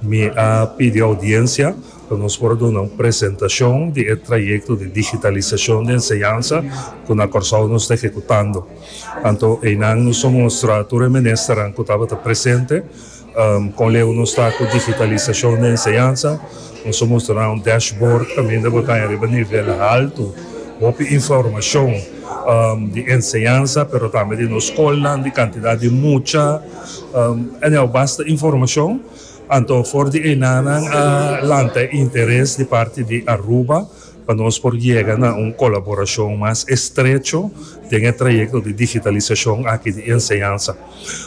Mi a pidi audiencia pa nos por a duna un presentacion di e trayecto di digitalisacion di enseñansa cu na Corsou nos ta ehecutando. Anto eynan nos a mustra tur e ministernan cu tabata presente con leu nos ta cu digitalisacion di enseñansa, nos a mustra nan un dashboard caminda bo caña riba nivel halto, hopi informacion di enseñansa pero tambe di nos scolnan, di cantidad di mucha. Anyao basta informashon, anto for di einan nan a lanta e interes di parti di Aruba pa nos por yega na un kolaborashon mas estrecho den e trayekto di digitalisashon aki di enseñansa.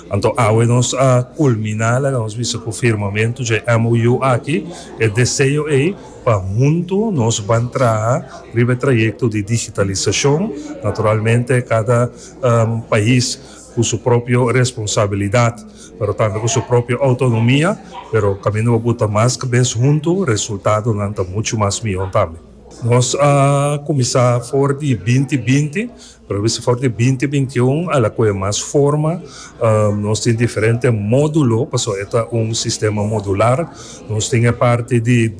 Anto awe nos a kulminá, laga nos bisa ku firmamentu dje MOU aki, e deseo ei pa huntu nos ban traha riba e trayekto di digitalisashon, naturalmente kada pais. cu su propio responsabilidad pero tambe cu su propio autonomia pero caminda bo buta mas cabes hunto resultadonan ta mucho mas miho tambe. Nos a cuminsa for di binti binti pero bisa for di binti binti un a la coge mas forma nos tin diferente modulo pasobra e ta un sistema modular nos tin e parti di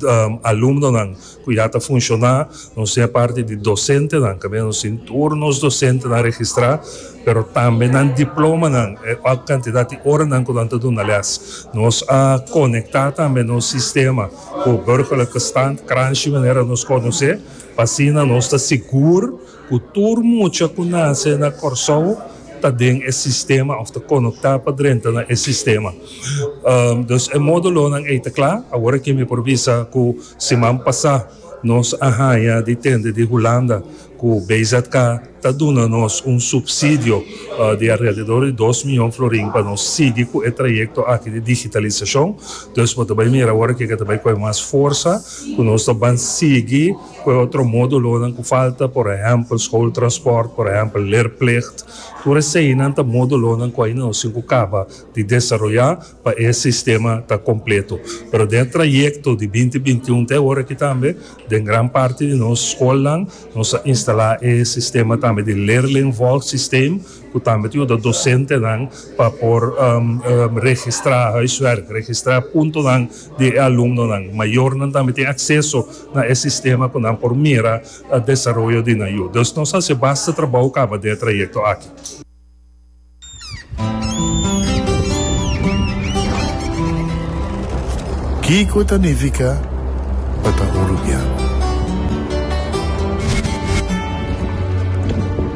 alumnonan Cu ya ta funciona. Nos tin e parti di docentenan, cabia nos tin tur nos docentenan registra, pero tambe nan diplomanan, e hoc cantidad di oranan cu nan ta duna les. Nos a conecta tambe nos sistema cu Burgerlijke Stand, Kranschi manera nos conoce, pa asina nos ta sigur. Ku tur mucha ku nase na Kòrsou ta den e sistema òf ta konoktá pa drenta na e sistema. Dus e módulonan ei ta kla. Awor aki mi por bisa ku siman pasá nos a haña di tende di Hulanda ku BZK ta duna nos un supsidio di alrededor di dos miyon florin pa nos sigui ku e trayekto aki di digitalisashon. Dus bo ta bai mira awor aki ku e ta bai kohe mas forsa ku nos ta ban sigui. Cu e otro modulonan cu falta, por ehempel, schooltransport, por ehempel, leerplicht, tur eseinan ta modulonan cu aina no sin cu caba di desaroya pa e sistema ta completo. Pero den e trayecto di binti binti un te aworaky tambe, den gran parti di nos schoolnan nos a instala e sistema tambe di leerlingvolgsysteem cu tambe ta yuda docentenan pa por registra huiswerk, registra puntonan di e alumnonan. Mayornan tambe tin akseso na e sistema ku nan por mira desaroyo di nan yu. Dus nos a hasi basta trabou kaba den e trayekto aki. Kiko ta nifiká pa ta un rubian?